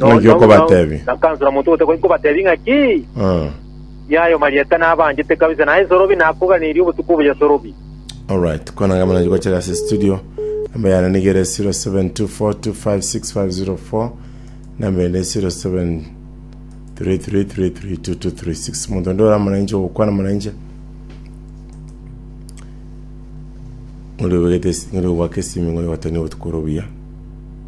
Ng'a eki okobateebia. Nakansora omonto ogoteeba gaki kobateebie ng'a ki? Ah, Niaye omarieta nabanchete kabisa, naye nsorobi nakoganeria obotuko obo yasorobi. alright. Kwana ng'a muna gochera ase studio. Namba yane nigere 0724256504. Namba ende 0733332236. Omonto onde ore amo nainche ogokwana amo nainche. Ng'ori obegete esi- ng'ori ogwaka esimi ng'ori gwatonia obotuko ore obuya.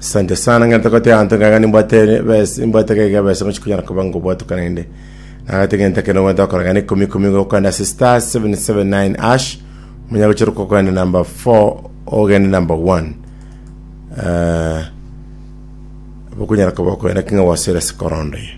Asante sana ng'a ntagote abanto ng'aga nimbwate bes- nimbwate gaiga besa mochie konyara koba ngobwatuka naende. Nagate genta kende ogwenta gokora gane ikomi ikomi gokanda ase star 779 ash omonya gochera kogenda number 4 ogende number 1. Eh, bokonyara koba okoenda king'a gwasore ase korondo eye.